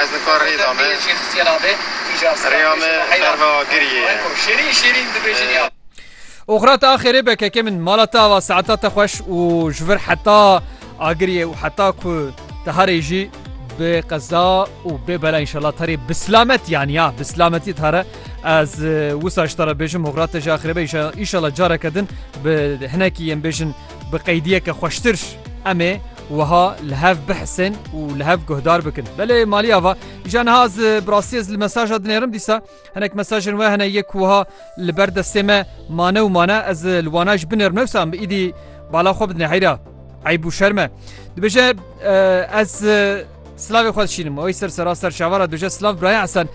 Ez nikar rê da me. Rêya me berva giriyê ye. Oxira te axêrê be keke min. Mala te ava saeta te xweş û ji vir heta agiriyê û heta ku te herê jî bi qeza û bê bela înşallah te rê bi silamet yanî ya bi silametî te re ez wisa ji te re bêjim oxira te jî axêrê be înşallah careke din bi hinekî yên bêjin Bi qeydiyeke xweştir em ê wiha li hev bihisin û li hev guhdar bikin. Belê malî ava. Îja niha ez bi rastî ez li mesaja dinêrim dîsa hinek mesajên we hene yek wiha li ber destê me mane û mane ez li wana ji binêrim newsa em bi îdî bala xwe bidinê heyra. Eyb û şerme. Dibêje ez Slavê xwe dişînim oy ser sera ser şavara duje Slav Biraya Esen.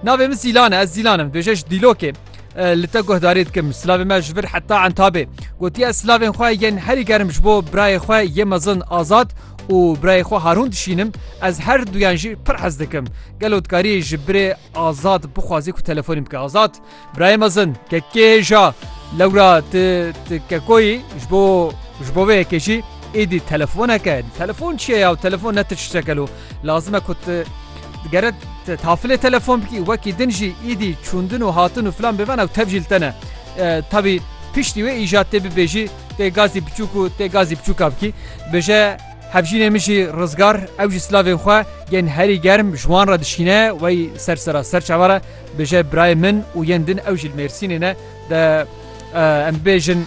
Navê min Zîlan e ez Zîlan im duje ji Dîlokê li te guhdarê dikim Slavê me ji vir heta entabê gotiye ez Slavên xwe yên herî gerim ji bo birayê xwe yê mezin azad û birayê xwe harûn dişînim ez her duyan jî pir hez dikim gelo dikarî ji birê azad bixwazî ku telefonî bike azad Birayê mezin ke kê hêja lewra ti ti kekoyî ji bo ji bo vê yekê jî êdî telefoneke telefon çi ye ya telefon ne tişteke lo lazim e ku ti gere te tafilê telefon bikî wekî din jî êdî çûndin û hatin û filan bêvana û tev jî li te ne tevî piştî wê îja tê bibêjî tê gazî biçûk û tê gazî biçûka bikî bije hevjînê min jî rizgar ew jî silavên xwe yên herî germ ji wan re dişîne wey ser sera ser çawa re Bije birayê min û yên din ew jî li Mêrsînê ne de em bibêjin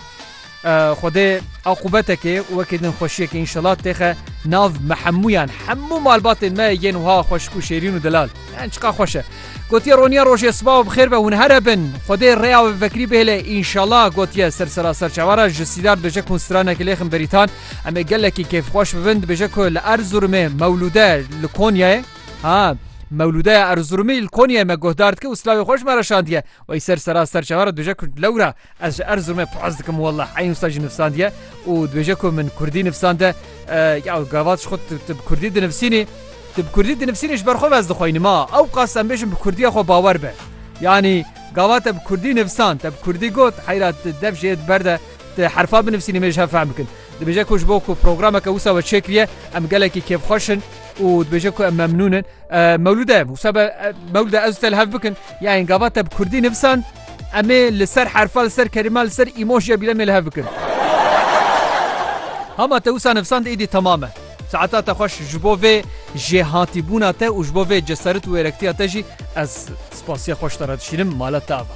Xwedê aqûbetekê û wekî din xweşiyekê înşela têxe nav me hemûyan hemû malbatên me yên wiha xweşik û şêrîn û delal yan çiqa xweş e. Gotiye roniya rojê sibaw bi xêr be hûn here bin Xwedê rêya wê vekirî bihêle înşela gotiye ser sera ser çavara ji Sîdar dibêje ku hûn stranekê lêxin berîtan em ê gelekî kêfxweş bibin dibêje ku li Erzurumê mewlûde li Konyayê Ha, Mewlûdeya Erzurumî li Konyayê me guhdar dike û silavê xwe ji me re şandiye. Wey ser sera ser çavan re dibêje ku lewra ez ji Erzurumê paz dikim wellah eyn wisa jî nivsandiye û dibêje ku min kurdî nivsande ya gavat ji xwe tu bi kurdî dinivsînî tu bi kurdî dinivsînî ji ber xwe ez dixweynim a ew qas em bêjin bi kurdiya xwe bawer be yanî gava te bi kurdî nivsan te bi kurdî got heyra tu dev jê di ber de tu herfa binivsînî mêj hev fehm bikin dibêje ku ji bo ku programeke wisa we çêkiriye em gelekî kêfxweş in û dibêje ku em memnûn in. Mewlûde wisa be Mewlûde ez te li hev bikin ya yên gava te bi Kurdî nivisand em ê li ser herfa li ser kerîma li ser îmojiya bîlemê li hev bikin. Hama te wisa nivisand êdî temam e. Saeta te xweş ji bo vê jêhatîbûna te û ji bo vê ceseret û wêrektiya te jî ez spasiya xweş te re dişînim mala te ava.